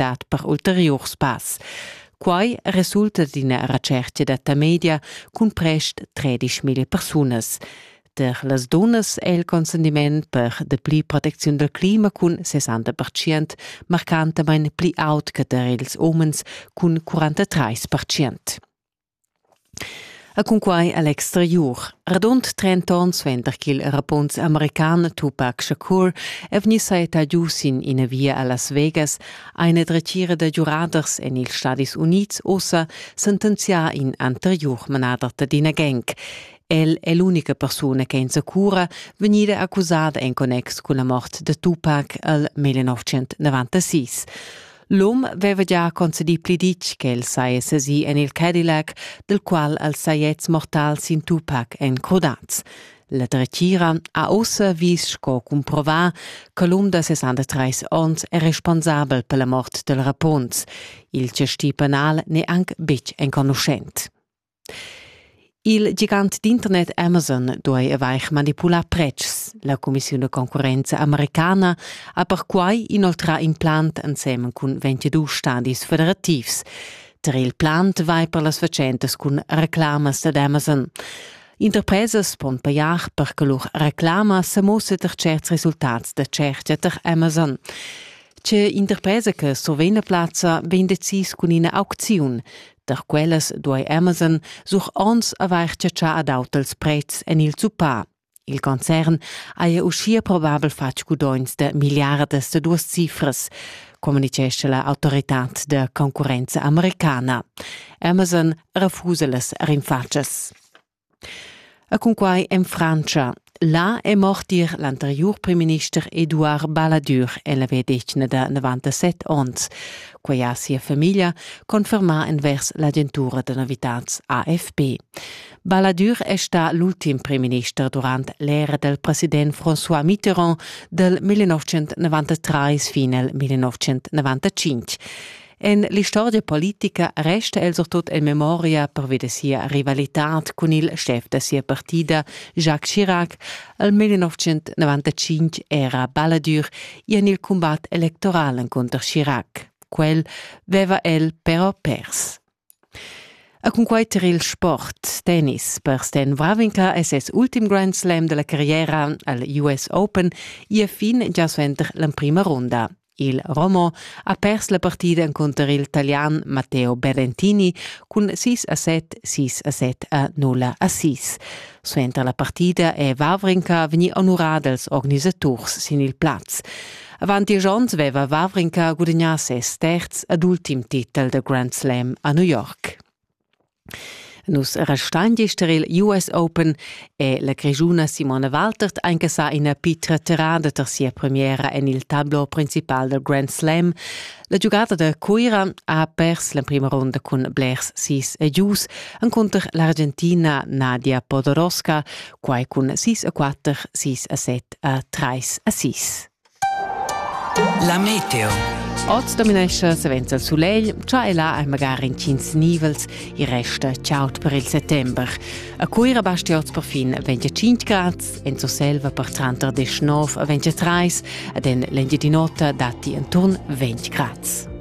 dat per ulteriurs pass. Quai resulta d'ina retschertga da Tamedia cun prest 13.000 persunas. Per las dunnas è il consentiment per de pli protecziun dal clima cun 60% marcantamain pli aut che tar ils umens cun 43%. E cunquai a l'exteriur. Radund trenta onns suenter ch'il rapunz american Tupac Shakur è vegni sajettà giu sin ina via a Las Vegas, ha ina dretgira da giuraders en ils Stadis Unids ussa sentenzià in anteriur manader d'ina gang. El è l'unica persuna che insacura vegnida accusada en connex cun la mort da Tupac al 1996. L'um veva gia concedì pli ditg ch'el saja sesì en il Cadillac, del qual els sajets mortals in Tupac èn crodats. La dretgira ha ussa vis sco cumprovà che l'um da 63 onns è responsabel per la mort del Rapunz. Il gestì penal n'è anc betg enconuschent. Il gigant d'internet Amazon duai avair manipulà pretschs. La cumissiun da concurrenza americana ha perquai inoltrà in plant ensemen cun 22 stadis federativs. Tar il plant vai per las fatschentas cun reclamas dad Amazon. Interpresas pon pajar per che lur reclama sa mussa tar certs resultats da tschertga tar Amazon. Tge interpresa che survegn la plazza vegn decis cun ina aucziun. Tar quellas duai Amazon sur onns avair chatschà ad auters pretschs en il zuppà. Il concern haja uschia probabel fatg gudogns da miliardas da duas cifras, communitgescha la autoritad da concurrenza americana. Amazon refusa las rinfatschas. E cunquai en Frantscha. Là è mort ir l'anteriur primminister Eduard Balladur, el aveva detg da 97 onns. Quai ha sia famiglia confermà envers l'agentura da novitads AFP. Balladur è stà l'ultim primminister durant l'era del president François Mitterrand dal 1993 fin al 1995. En l'istorgia politica resta el surtut en memoria pervi da sia rivalitad cun il schef da sia partida, Jacques Chirac. Al 1995 era Balladur i en il cumbat electoral encunter Chirac. Quel veva el però pers. A cunquai tar il sport, tennis, per Stan Wawrinka è ses ultim Grand Slam della carriera al US Open ia fin gia suenter l'emprima runda. Il Romo ha pers la partida encunter il talian Matteo Berentini cun 6 a 7, 6 a 7 a 0 a 6. Suenter la partida è Vavrinka vegnì onurà dals organisaturs sin il plaz. Avant diesch onns aveva Vavrinka gudagnà ses terz ed ultim titel da Grand Slam a New York. Nus restain gist tar il US Open è la grischuna Simone Waltert anche sa ina pitra terrada tar sia premiera en il tablo principal dal Grand Slam. La giugada da Cuira ha pers l'emprima ronda cun blers sis e gius encunter l'Argentina Nadia Podoroska, quai cun 6 a 4, 6 a 7 a 3 a 6. La meteo. Oz dominescha savens il sulegl, cha e là hai magari intgins nivels, i resta chaud per il settember. A Cuira basti oz per fin 25 grad, en Surselva per tranter 19 e 23 ed en l'Engiadin'Ota datti inturn 20 grad.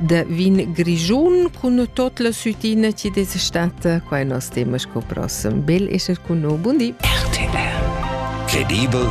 da vin grigiun cun tot la sütina ci des stata quai nos tema sco prossem bel esser cun no bundi RTR Credibel